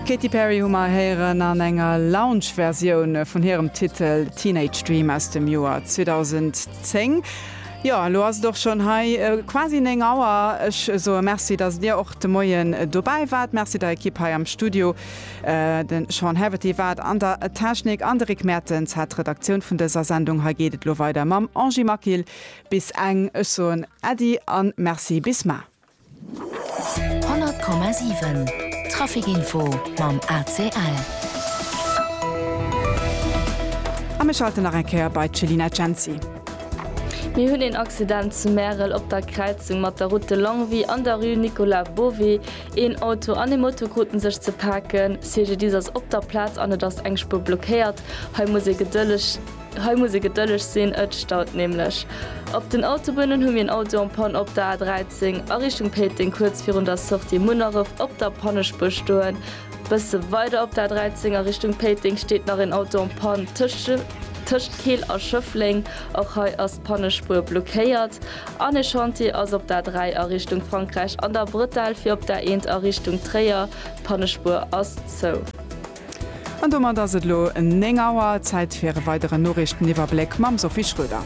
D'Katy Perry hu mer héieren an enger Lounge-Versioun vun hirem Titel Teenage Dream aus dem Joer 2010. Jo, elo ass et och schonn hei quasi 9 Auer. Ech soe Merci, dass Dir och de Moien dobäi waart. Merci der Ekipp hei am Studio. De Sean Haverty war an der Technik an de Rick Mertens hat d'Redaktioun vun dëser Sendung. Hei geet et elo weider mam Angie Maquil bis eng. Ech soen Äddi a Merci bis mar. 100,7 Traficinfo mam ACL. A mir schalten nach eng Kéier bei d'Céline Agency. Mir hunn een Accident zu Märel op der Kräizung mat der Route de Longwy an der Rue Nicolas Bové. Een Auto an ee Moto kruten sech ze paken. CGDIS ass op der Plaz an et ass eng Spuer blockéiert. Hei muss ee gedëlleg. Hei muss ee gedëlleg sinn, ët staut nämlech. Op den Autobunnen hu mir en Auto en panne op der A13 a Richtung Péiteng kuerz virun der Sortie Munneref op der Pannespuer stoen. Bësse weider op der A13 a Richtung Péiteng steet nach en Auto en panne tëscht Keel a Schëffleng. Och hei ass d'Pannespuer blockéiert. An e Chantier ass op der A3 a Richtung Frankräich an der Brëttel fir op der A1 a Richtung Tréier. D'Pannespuer ass zou. An domat ass et elo 9 Auer. Zäit fir e weideren Noriichteniwwerbléck mam Sophie Schröder.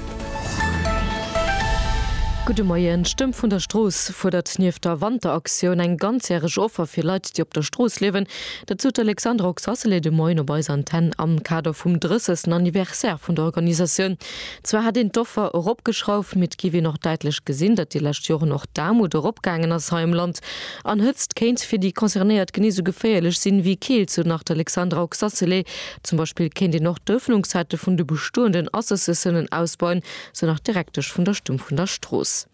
Gudde Moien. D'Stëmm vun der Strooss fuerdert nieft der Wanteraktioun eng ganzjäreg Offer fir Leit, déi op der Strooss liewen. Dat sot d'Alexandra Oxacelay de Moien op eiser Antenn am Kader vum 30. Anniversaire vun der Organisatioun. Zwar hätt een d'Offer eropgeschrauft, mee et géif een och däitlech gesinn, datt déi lescht Joren och d'Aarmut eropgaangen ass hei am Land. An Hëtzt kéint fir déi Concernéiert genee sou geféierlech sinn wéi Keelt, sou nach d'Alexandra Oxacelay. Zum Beispill kéint een och d'Ëffnungssäite vun de bestoenden Associatiounen ausbauen, sou nach d'Direktesch vun der Stumm vun der Strooss.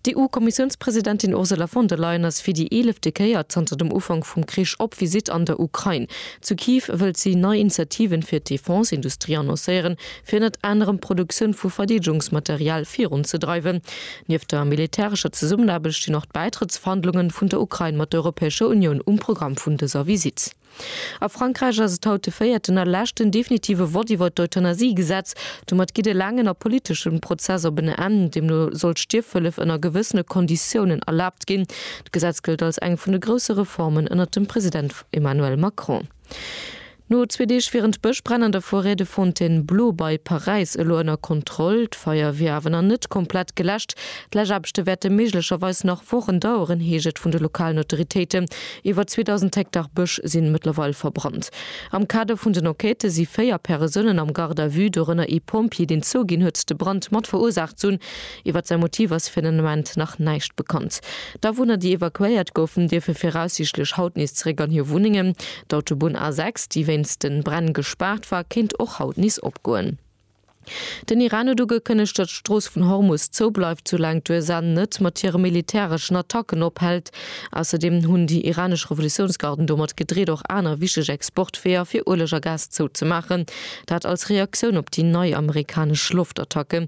D'EU-Kommissiounspresidentin Ursula von der Leyen ass fir déi eelefte Kéier zanter dem Ufank vum Krich op Visitt an der Ukrain. Zu Kiew wëllt si nei Initiativen fir d'Defense-Industrie annoncéieren, fir ënnert anerem d'Produktioun vu Verdeedegungsmaterial virunzedreiwen. Nieft der militärescher Zesummenaarbecht stinn och d'Bäitrëttsverhandlungen vun der Ukrain mat der Europäescher Unioun um Programm vun dëser Visitt. A Frankräich ass et haut de véierten a leschten definitive Vott iwwert d'Euthanasie-Gesetz. Domat geet e laangen a politeschen Prozess op en Enn. Deemno soll d'Stierfhëllef ënner gewëssene Konditiounen erlaabt ginn. D'Gesetz gëllt als eng vun de grousse Reformen ënnert dem President Emmanuel Macron. No zwee Deeg wieren d'Bëschbränn an der Forêt de Fontainebleau bei Paräis elo ënner Kontroll. D'Feier wier awer nach net komplett geläscht. D'Läschaarbechte wäerte méiglecherweis nach Wochen daueren, heescht et vun de lokalen Autoritéiten. Iwwer 2.000 Hektar Bësch sinn mëttlerweil verbrannt. Am Kader vun den Enquêten si véier Peresounen am Garde à vue, dorënner ee Pompjee, deen zouginn huet, de Brand mat verursaacht z'hunn. Iwwer säi Motiv ass fir den Ament nach näischt bekannt. D'Awunner, déi evakuéiert goufen, dierfe viraussiichtlech haut nees zeréck an hir Wunnengen. D'Autobunn A6, déi wéinst de Bränn gespaart war, kéint och haut nees opgoen. Den Iran huet ugekënnegt, datt d'Strooss vun Hormus zou bleift, soulaang d'USA net mat hire militäreschen Attacken ophält. Ausserdeem hunn déi iranesch Revolutiounsgarden domat gedreet, och aner wichteg Exportweeër fir Ueleg a Gas zouzemaachen. Dat als Reaktioun op déi nei amerikanesch Loftattacke.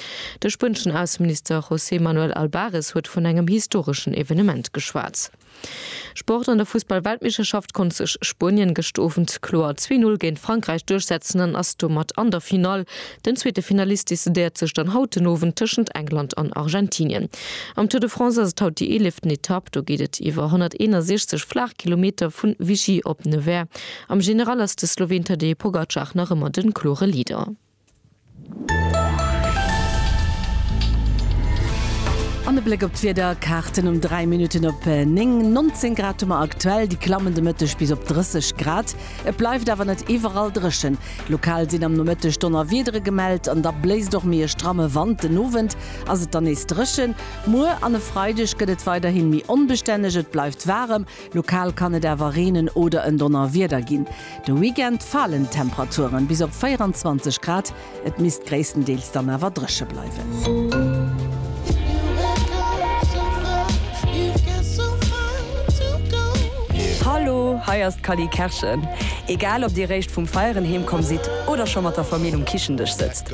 De spueneschen Ausseminister José Manuel Albares huet vun engem historeschen Evenement geschwat. Sport, An der Fussball-Weltmeeschterschaft konnt sech Spuenien gëscht Owend kloer 2-0 géint Frankräich duerchsetzen an ass domat an der Finall. Den zweete Finalist decidéiert sech dann haut den Owend tëschent England an Argentinien. Am Tour de France ass et haut déi eeleften Etapp. Do geet et iwwer 161 flaach Kilometer vu Vichy op Nevers. Am General ass de Sloween Tadej Pogacar nach ëmmer de klore Leader. An e Bléck op d'Wiederkaarten um 3 Minutten op 9. 19 Grad hu mer aktuell, déi klammen de Mëtteg bis op 30 Grad. Et bleift awer net iwwerall dréchen. Lokal sinn am Nomëtteg Donnerwiedere gemellt an da bléist och méi e stramme Wand. Den Owend ass et dann nees dréchen. Muer an e Freideg gëtt et weiderhi méi onbestänneg, et bleift waarem. Lokal kann et awer reenen oder en Donnerwieder ginn. De Weekend falen d'Temperaturen bis op 24 Grad, et misst gréisstendeels dann awer dréche bleiwen. Hallo, hei ass d'Cally Kerschen. Egal ob dir réischt vum Feieren heemkomm sidd oder scho mat der Famill um Kichendësch sëtzt,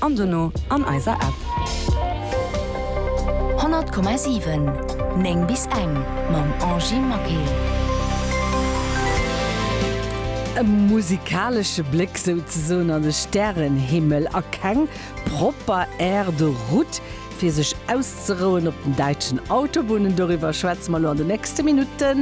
an dono an eiser App. 100,7 9 bis eng mam Angie Maquet. E musikalesche Bléck souzesoen an de Stärenhimmel a keng propper Aire de route fir sech auszerouen op den däitschen Autobunnen, doriwwer schwätze mer elo an de nächste Minutten.